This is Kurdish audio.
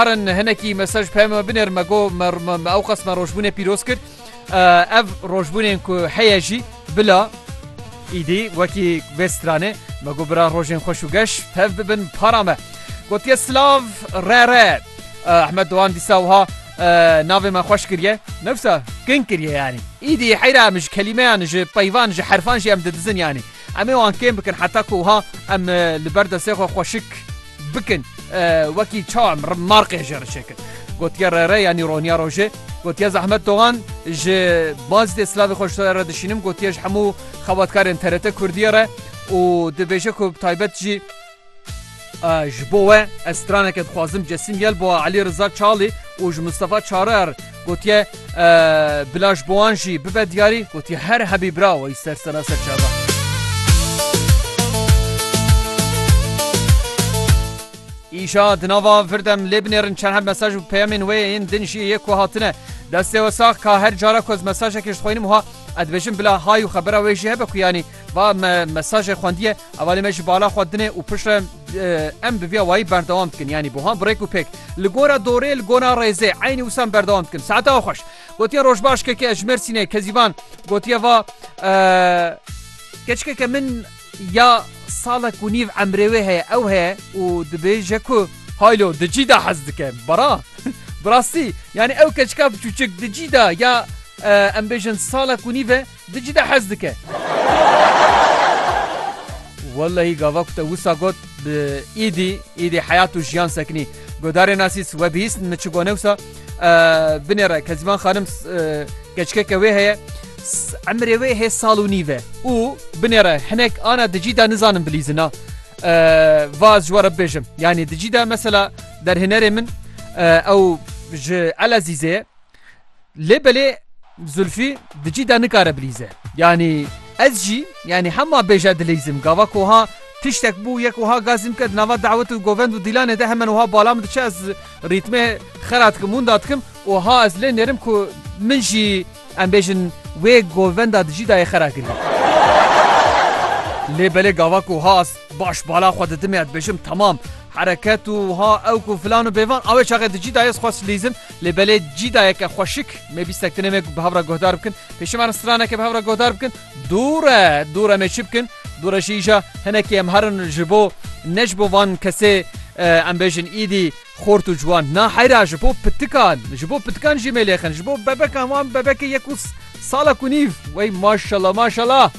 Karin hinekî mesaj peyama me binêr me got me me me ewqas me rojbûnê pîroz kir. Eh, Ev rojbûnên ku heye jî bila îdî wekî vê stranê me got bira rojên xweş û geş tev bibin para me. Gotiye silav re re. Eh, Ahmet Doğan dîsa wiha eh, navê me xweş kiriye. Ne wisa kin kiriye yanî. Îdî heyra em ji kelîmeyan ji peyvan ji herfan jî em didizin yanî. Em ê wan kêm bikin heta ku wiha em eh, li ber destê xwe xweşik Bikin wekî çam rim marqê jê rişê kir. Gotiye re re yanî roniya rojê gotiye zehmet dogan ji bazî dê silavê xweş re dişînim gotiye ji hemû xebatkarên TRT Kurdiye re û dibêje ku taybet jî ji bo we ez straneke dixwazim Cesîm Yelboa Elî Riza Çalî û ji Mistefa Çarer Gotiye bila ji bowan jî bibe diyarî gotiye her hebî bira wî ser sena ser çava. Îşa di nava virdem lê binêrin çend heb mesaj û peyamên wê yên din jî yê ku hatine. Destê we sax ka her cara ku ez mesajekê ji xwînim ha edbêjin bila hay û xebera wê jî hebe ku yanî Va me mesajê xwendiye, hevalê me ji bala xwe dinê û piştre em bi vîya wayî berdewam dikin yanî buhan birêk û pêk li gora dorê li gona rêzê eynî wisa em berdewam dikin saete a xweş gotiye rojbaş keke ji Mêrsînê Kezîvan gotiye va keçikeke min ya salek û nîv emrê wê heye ew heye û dibêje ku haylo di cî da hez dike bara birastî yanî ew keçika biçûçik di cî da ya em bêjin salek û nîve Dicle hez dike. Wellehî gava ku te wisa got bi îdî îdî heyat û jiyan sekinî. Godarê nasîs we bihîstin min çi gone wisa binê re Kezîman xanim keçikeke wê heye emrê wê hê sal û nîve û binê re hinek ana dicî de nizanin bilîzina. Vaz ji we re bibêjim. Yanî dicî de mesela derhênerê min ew ji Elezîzê ye Lê belê Zulfî di cî de nikare bilîze. Yanî ez jî yanî hema bêje dilîzim. Gava ku ha tiştek bû yek wiha gazîm ke di nava dawet û govend û dîlanê de hemen wiha bala min diçe ez rîtmê xera dikim wenda dikim û ha ez lê nêrim ku min jî em bêjin wê govenda di cî de yê xera kirî. Lê belê gava ku ha ez Baş bala xwe didim ya dibêjim temam hereket û ha ew ku filan û bêvan awê çaxê di cî dayê xwest lîzin lê belê cî dayeke xweşik mê bîstek dinê mê ku bi hevra guhdar bikin pêşî me straneke bi hevra guhdar bikin dûre dûre mê çi bikin dûre jî îja hinekî em herin ji bo ne ji bo van kesê em bêjin îdî xort û ciwan na heyra ji bo pitikan ji bo pitikan jî mê lêxin ji bo bebekan wan bebekê yek û sala ku nîv wey maşala maşala